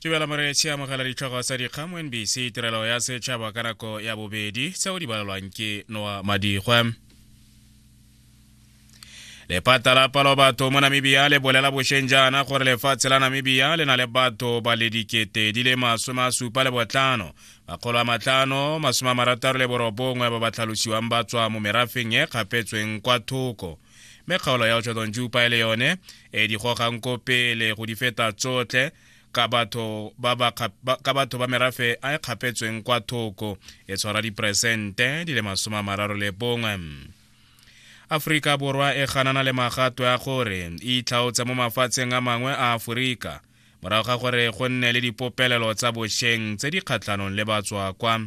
tebela moreetši amogela ditlhogo tsa dikgang mo nbc tirelo ya setšhaba ka nako ya bobedi tseo di balelwang ke noa madigwa lepata la palo batho mo namibia le bolela bošeng jaana gore lefatshe la namibia le na le batho ba le dikete di le masome a supa le botlhano makgolo a matlhano masome a marataro le borobongwe ba ba tlhalosiwang ba tswa mo merafeng e kgapetsweng kwa thoko me kgaolo ya otshodong jupa e le yone e di gogang ko pele go di feta tsotlhe ka batho ba ba ka batho ba merafe a e kgapetsweng kwa thoko e tshwara diperesente di le masome a mararo le bongwe aforika borwa e ganana le magato ya gore e itlhaotse mo mafatsheng a mangwe a aforika morago ga gore go nne le dipopelelo tsa bosheng tse di kgatlhanong le batswakwa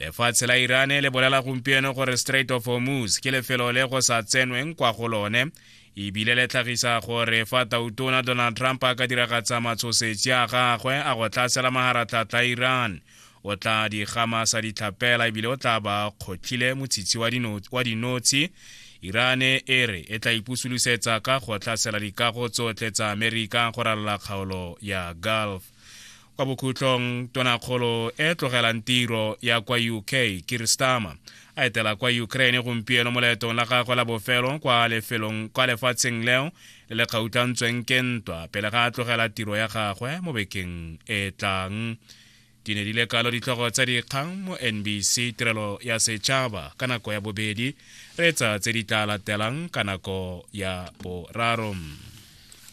lefatshe la irane le bolela gompieno gore strait of hormuz ke lefelo le go sa tsenweng kwa go lone ebile le tlhagisa gore fa tautona donald trump a ka diragatsa matshosetsi a gagwe a go tlhasela maharatlhatla iran o tla di gama sa ditlhapela ebile o tla ba kgotlhile motshitshi wa dinotshi irane e re e tla ipusolosetsa ka go tlhasela dikago tsotlhe tsa amerika go ralola kgaolo ya gulf kwa bokhutlong tonakgolo e tlogelang tiro ya kwa uk kiristama a etela kwa ukraine gompieno mo leetong la gagwe la bofelo kwa lefelong kwa lefatsheng leo le le kgautlantsweng ke ntwa pele ga a tlogela tiro ya gagwe mo bekeng e tlang di ne di le kalo ditlhogo tsa dikgang mo nbc tirelo ya setšhaba ka nako ya bobedi re tsa tse di tla latelang ka nako ya boraro